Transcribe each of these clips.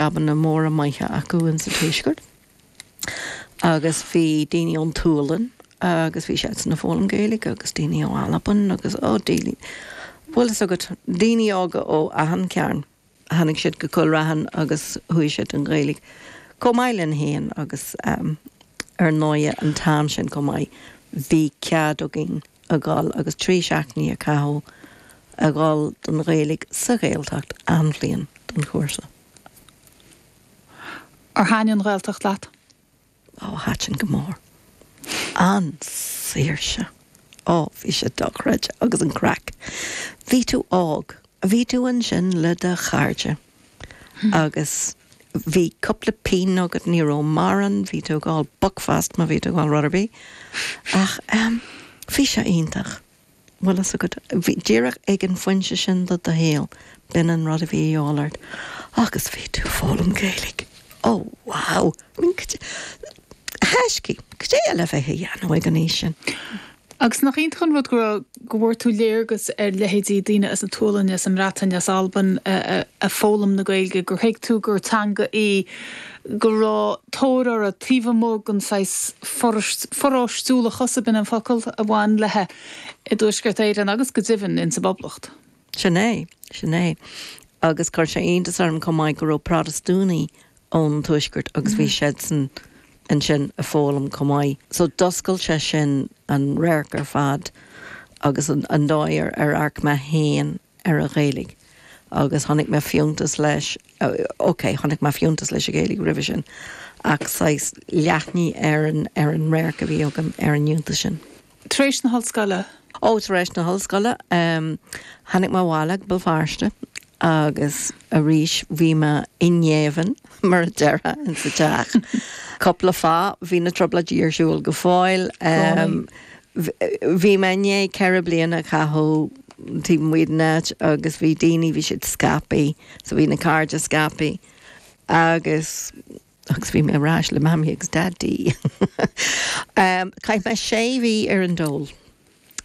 jabanna móra maithe acu ins an Tuaisceart agus bhí daoine ón tSualainn agus bhí siadsan ag foghlaim Gaeilge agus daoine ó Albain agus ó daoine bhuel fhios agat daoine óga ó achan cearn tháinig siad go Cúil Raithin agus chuaigh siad don Ghaeilge chomh maith linn héin agus ar ndóigh an t-am sin chomh maith bhí cead againn a dhul agus trí sheachtainí a chaitheamh ag dul don Ghaeilge sa Ghaeltacht an bhliain don chúrsa. Ar thaitin an Ghaeltacht leat? Ó, thaitin go mór. An tsaoirse! Ó, bhí sé dochreidte agus an craic. Bhí tú óg, bhí tú ansin le do chairde. agus bhí cúpla pingin agat ní raibh mórán bhí tú ag fháil buckfast má bhí tú ag fháil rud ar bith ach bhí sé iontach bhuel fhios agat bhí díreach ag an phointe sin de do shaol b'in an rud a bhí de dhíobháil ort agus bhí tú ag foghlaim Gaeilge ó wow I mean cad é thaisce cad é eile a bheith ag dhéanamh ag an aois sin? Agus nach iontach an rud go raibh, go bhfuair tú léargas ar leithéidí daoine as an tSualainn, as an mBreatain, as Albain ag foghlaim na Gaeilge, gur thuig tú gur teanga í go raibh tóir uirthi taobh amuigh den saghas paróistiúlachas, ab in an focal? a bhain léithi i dTuaisceart Éireann agus go deimhin in sa bPoblacht. Sin é, sin é. Agus chuir sé iontas orm chomh maith go raibh Protastúnaigh ón Tuaisceart agus bhí siadsan ansin ag foghlaim chomh maith. So d'oscail sé sin an radharc ar fad agus an dóigh ar amharc mé féin ar an Ghaeilge agus chonaic mé fiúntas leis, ok, chonaic mé fiúntas leis an Ghaeilge roimhe sin ach saghas leathnaigh an radharc a bhí agam ar an fhiúntas sin. Tar éis na hollscoile. Ó, tar éis na hollscoile, tháinig mé abhaile go Béal Feirste agus arís bhí mé i ngéibheann, mar a déarfá, insa teach. Cúpla fáth, bhí na Trioblóidí ar siúl go fóill, bhí mé i ndiaidh ceithre bliana a chaitheamh taobh amuigh den áit agus bhí daoine, bhí siad scaipthe, so bhí na cairde scaipthe agus, Agus bhí mé ar ais le Mamaí agus Daidí. Chaith mé sé mhí ar an dól.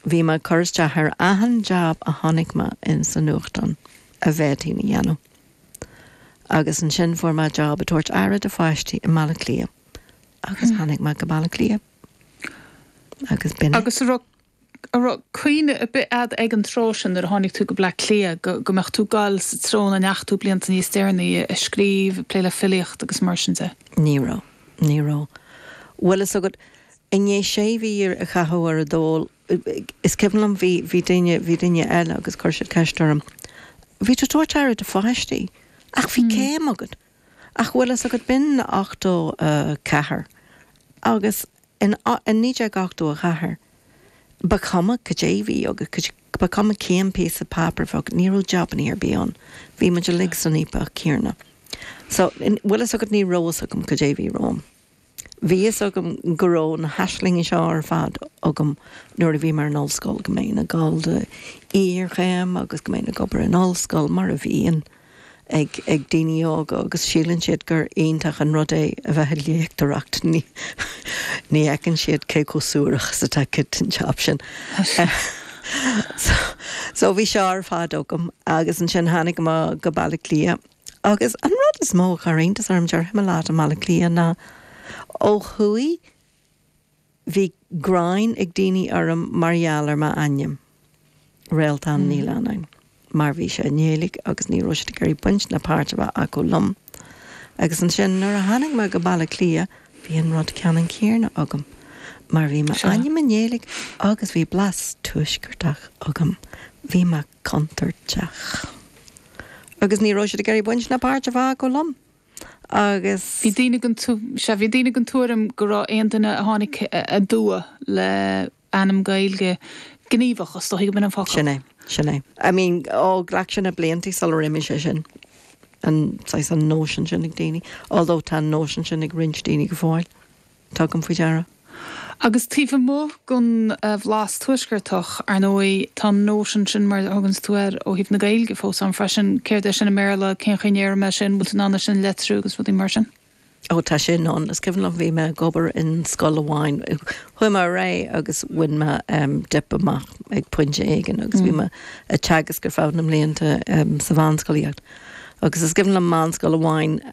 Bhí mé ag cur isteach ar achan jab a chonaic mé in sa nuachtán a bhféadfainn a dhéanamh. Agus ansin fuair mé jab ag tabhairt aire do pháistí i mBaile Átha Cliath. Agus tháinig mé go Baile Átha Cliath. Agus b'in é. Agus a raibh a raibh cuimhne ar bith agat ag an tráth sin, nuair a tháinig tú go Bleá Cliath, go mbeadh tú ag dul sa treo ina ndeachaigh tú blianta níos deireanaí, ag scríobh, ag plé le filíocht agus mar sin de? Ní raibh. Ní raibh. Bhuel, fhios agat, i ndiaidh sé mhí a chaitheamh ar an dól, is cuimhin liom, bhí, bhí duine, bhí duine eile agus chuir siad ceist orm, bhí tú ag tabhairt aire do pháistí ach bhí céim agat. Ach bhfuil fhios agat, b'in 84 agus in 1984, ba chuma cad é bhí agat, ba chuma cén píosa páipéir bhí agat, ní raibh jabannaí ar bith ann, bhí muid uilig san fhaopach céarna. So, bhfuil fhios agat, ní raibh fhios agam cad é bhí romham. Bhí fhios agam go raibh na haislingí seo ar fad agam nuair a bhí mé ar an ollscoil, go mbeinn ag dul do iarchéim agus go mbeinn ag obair in ollscoil, mar a bhíonn ag daoine óga agus síleann siad gur iontach an rud é a bheith ag léachtóireacht. Ní fheiceann siad cé chomh suarach is atá an jab sin. So bhí seo ar fad agam agus ansin tháinig mé go Baile Átha Cliath. Agus an rud is mó a chuir iontas orm, déarfaidh mé leat, i mBaile Átha Cliath ná ó thuaidh, bhí gráin ag daoine orm mar gheall ar m'ainm, Réaltán Ní Leannáin, mar bhí sé i nGaeilge agus ní raibh siad ag iarraidh baint ná páirt a bheith acu liom. Agus ansin nuair a tháinig mé go Baile Átha Cliath, bhí an rud ceannann céarna agam mar bhí m'ainm i nGaeilge agus bhí blas Tuaisceartach agam. Bhí mé. contúirteach. Agus ní raibh siad ag iarraidh baint ná páirt a bheith acu liom. Agus. sea, bhí daoine den tuairim go raibh aon duine a tháinig aduaidh le ainm Gaeilge gníomhach, is dócha gurb in an focal. Sin é, sin é. I mean, ó, ghlac sé na blianta sular imigh sé sin, an saghas, an nóisean sin ag daoine, although tá an nóisean sin ag roinnt daoine go fóill. Tugaim faoi deara, agus taobh amuigh den bhlas tuaisceartach, ar ndóigh, tá an nóisean sin, mar a thuganns tú air, ó thaobh na Gaeilge fós ann freisin. Céard é sin i mBéarla? Cén chaoi a ndéarfaidh mé sin? An bhfuil tú in ann é sin a letriú? Agus rudaí mar sin. Ó, tá sin ann. Is cuimhin liom, bhí mé ag obair in scoil amháin, chuaigh mé ar aghaidh agus bhain mé dip amach ag pointe éigin agus bhí mé ag teagasc ar feadh na mblianta sa mheánscolaíocht. Agus is cuimhin liom meánscoil amháin